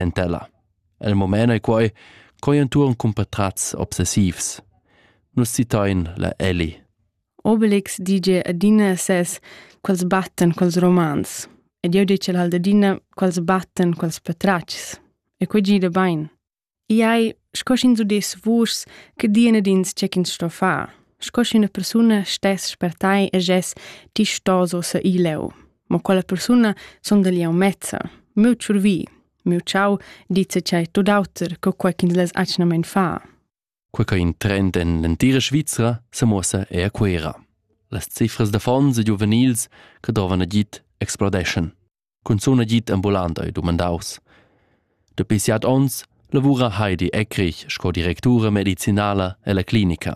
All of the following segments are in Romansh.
en tela. El moment ei quei coi entuorn cun patratgs obsessivs. Nus citain la Ellie. Obelix dice adina ses quels batten quels romans ed jeu dice al adina quels batten quels patratgs e quei gida bein. Iai sco sch'ins udess vuschs che dien ed ins c'è ch'ins sto far, sco sch'üna persuna stess per tai e gess ti sto so se ileu. ma quella persuna sonda liau mezza, meu tschurvi, meu ciau dice chai tot auter co quei ch'ins less atgnamein far. Quei che in trend en l'entira Svizra se muossa è a Cuera. Las cifras da fonds e giuvenils che dovan agit explodeschan. Cunzun agit ambulant ei domandaus. Dapi siat ons lavura Heidi Eckrich sco directura medicinala ella clinica.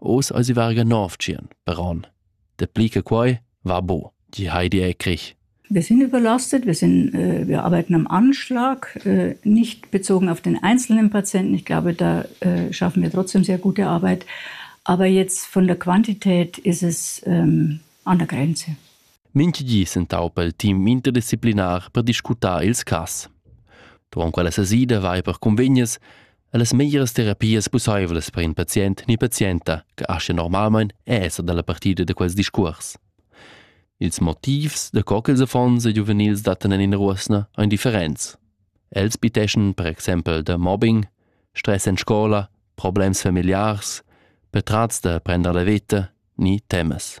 Oz eisi varga nov tschien per onn. Dapli che quei va bo, di Heidi Ekrich. Wir sind überlastet, wir, sind, äh, wir arbeiten am Anschlag, äh, nicht bezogen auf den einzelnen Patienten. Ich glaube, da äh, schaffen wir trotzdem sehr gute Arbeit. Aber jetzt von der Quantität ist es ähm, an der Grenze. Minchigli sentaupa il team interdisziplinär per discutar ils cas. Dunque la sesida vai per convegnes Las meglieras terapias pussaivlas per in pazient ni pazienta che aschia normalmein è esser dalla partida da quels discuors. Ils motivs da co ch'ils affons e giuvenils dattan en ina ruosna ein differents. Els biteschan per exempel da mobbing, stress en scola, problems familiars, patrats da prender la veta ni temas.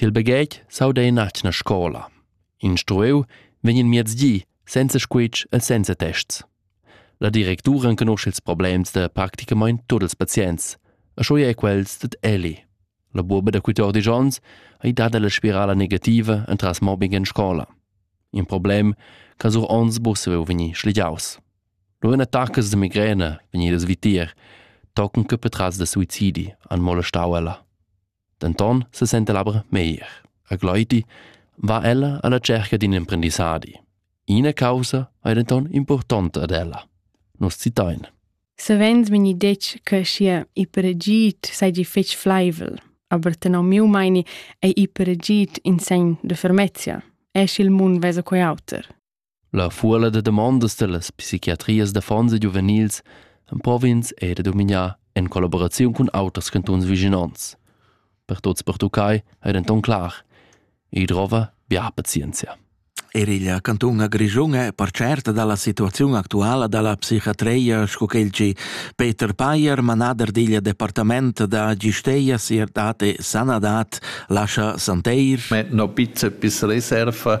Til baghetg s'auda in atgna scola. Instrueu vegn il miezdi senza squitsch e senza tests. La directura enconosce ils problems da practicamain tut ils pazients, e scho è quels dad Eli. La buoba da 14 onns ha dada la spirala negativa entras mobbing in scola. In problem che sur ons busseu vegni schligiaus. Lo in attacas de migrene vegnidas vitier, tocken che petras da suicidi han molestau ella. denton sesenta aber meglier. A Gleiti va ella alla cerca d'in emprendissadi. Ina causa ei denton importanta ad ella. Nus citain. Savens mi detg che sia ipergit seigi fetg fleivel, aber tenor miu meini ei ipergit in segn de fermezia. Es il mun vesa quei auter. La fuola da damondas dallas psichiatrias d'affons e giuvenils emprov'ins era da dumignar en collaboraziun cun auters cantuns vischinonts. Per tuts pertuccai ei denton clar: ei drova bia pazienzia. Er il cantun Grischun è per certa dalla situaziun actuala dalla psichiatria sco quel che Peter Payer, manader digl departament da Gisteia, Sierdad e Sanadad, lascia Santeir. Ma no pizza piss reserva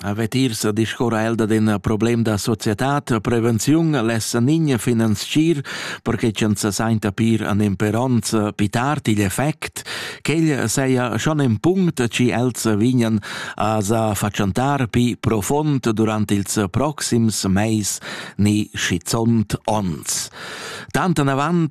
Avet irs a discurrer el dad ün problem da societad, prevenziun lessa nigna finanzchir, perche ch'el se sainta pir an imperonz pitar til effect, ch'el seia schon ün punct chi els vignan a sa fatschantar pi profond durant ils proxims meis ni schizont ons. Tant anavant